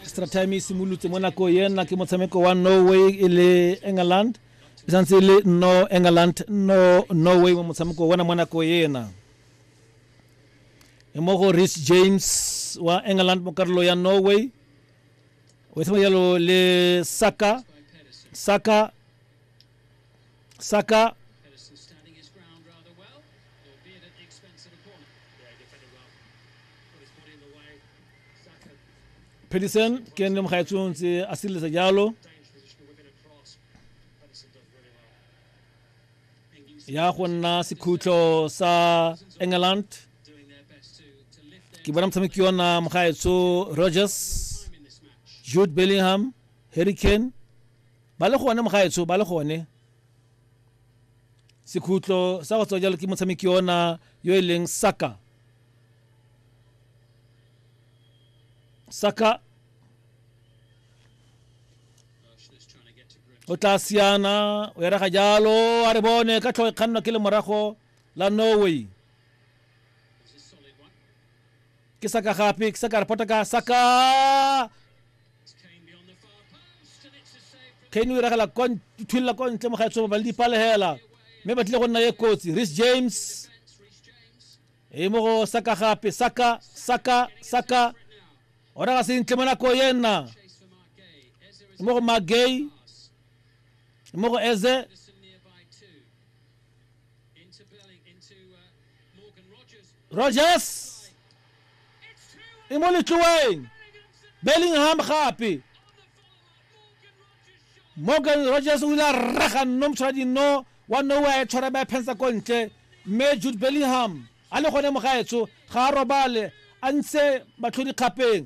extra time e simolotse mo nako ena ke motshameko wa norway e le england e santse e le no england no norway mo motshameko ona mo nako ena e mo go rich james wa england mo karolo ya norway o e tshameka jalo le saka saka Saka Pedersen ke ene mo gaetsong tse a sireletsa jalo ya go nna sekhutlo sa england ke bona motshameki yona mo gaetso rogers jude bellingham harry kane Ba le gone mogaetsho ba le gone. Sekhutlo sa go tswa jalo ke motshameki ona yo e leng Saka. Saka o tla siana o erega jalo a re bone ka tlhogo e kgannwa ke lemorago la norway ke saka gape ke saka re potaka saka kane o iragela thulula ko ntle mo ga tsoma ba le dipalegela mme ba tlile go nna ye kotsi ris james e mo go saka gape saka saka saka o raga sentle mo nako ye nna e mo go magay e mo go eze rogers e mo letloeng bellingham gape morgan rogers o ile a rraga nno motshwara dinno wa nowe a e tshwara ba e phensa ko ntle mme jude bellingham a le gone mogaetso ga a robale a ntshe matlhodikgapeng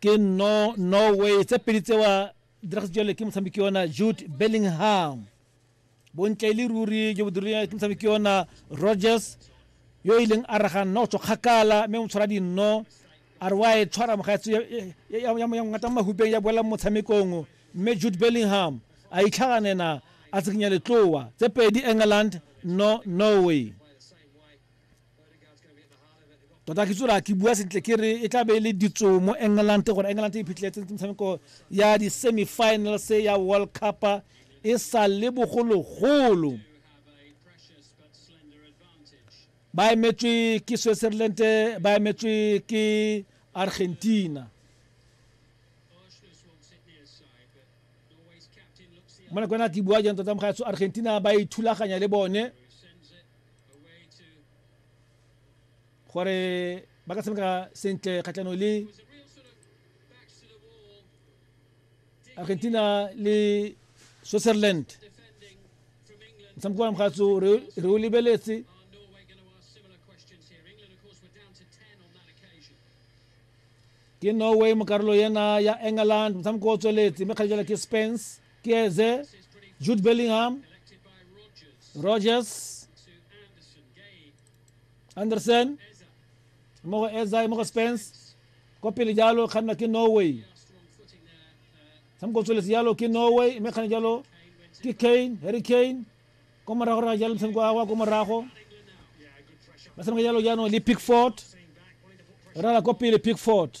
ke no norway tse pedi tsewa diragatse jalo ke motshameki yona jude bellingham bontle e le ruri jo bo dirileng ke motshameki yona rogers yo e leng a raganna go tswa kgakala mme o tshwara dinno a re wa e tshwara mogatso ngata mo mahupeng ya boela mo motshamekong mme jude bellingham a itlhaganena a tsekinya letloa tse pedi england no norway tota ke tsola ke bua sentle ke re e tla be e le ditso mo england gore england e phitlheletse metshameko ya di-semifinals ya world cup e sa le bogologolo ba emetswe ke switzerland ba emetswe ke argentina mo nakwana ke bua jang tota mogaetso argentina ba ithulaganya le bone gore ba ka tshameka sentle kgatlhanong le argentina le switzerland motshameko wa mogatso re o lebeletse ke norway mo karolo yena ya england motshameko o tsweletse mme kgale jala ke spence Chiese, Jude Bellingham, Rogers, Anderson, mo go Eza, mo go Spence, ko pele jalo kganna ke Norway. Samko tsweletse jalo ke Norway, mme kganne jalo ke Kane, Harry Kane, ko morago ra jalo motshameko wa kwa ko morago. Ba tshameka jalo jaanong le Pickford, rala ko pele Pickford.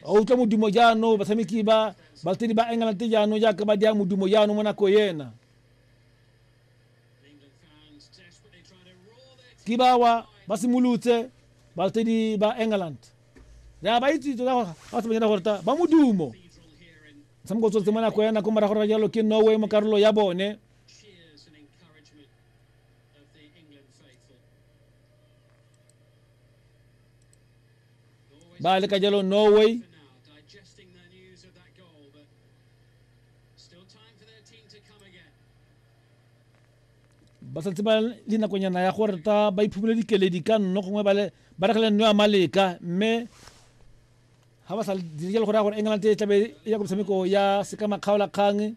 a utlwa modumo jaanong batshameki ba balatedi ba england jaanong jaaka ba dia modumo jaanong mo nako ena ke bawa ba simolotse balatedi ba england ya ba itse tota gore ga se banyana gore ta ba modumo motshameko o tsotse mo nako ena ko morago ra jalo ke norway mo karolo ya bone baali ka jalo norway ba santse ba le nakonyana ya gore ta ba iphumele dikeledi ka nno gongwe ba rekele nno ya maleka mme ga ba sa dire jalo gore ya gore england e tlabe e ya ko metshameko ya seka makgaolakgang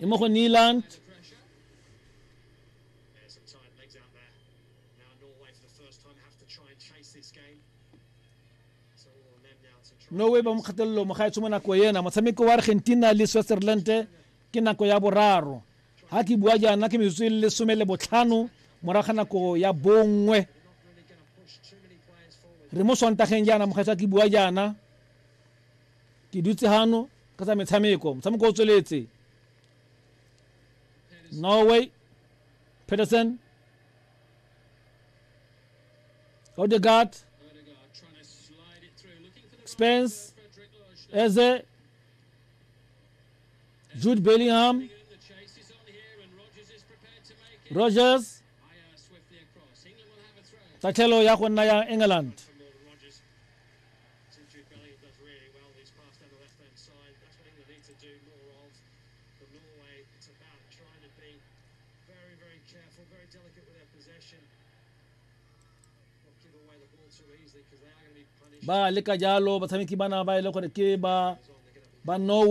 E mo go Nyland. norway ba mo kgatelelo mo ga e tsho mo nako ena motshameko wa argentina le switzerland ke nako ya boraro ga ke bua jaana ke metsotso e le lesome le botlhano morago ga nako ya bongwe re mo swantageng jaana mogaetsa ke bua jaana ke dutse gano ka tsa metshameko motshameko o tsweletse norway peterson odegaard spence eze jude bellingham rogers tatlhelo ya go nna ya england ba leka jalo batshameki bana ba e le gore ke ba ba norway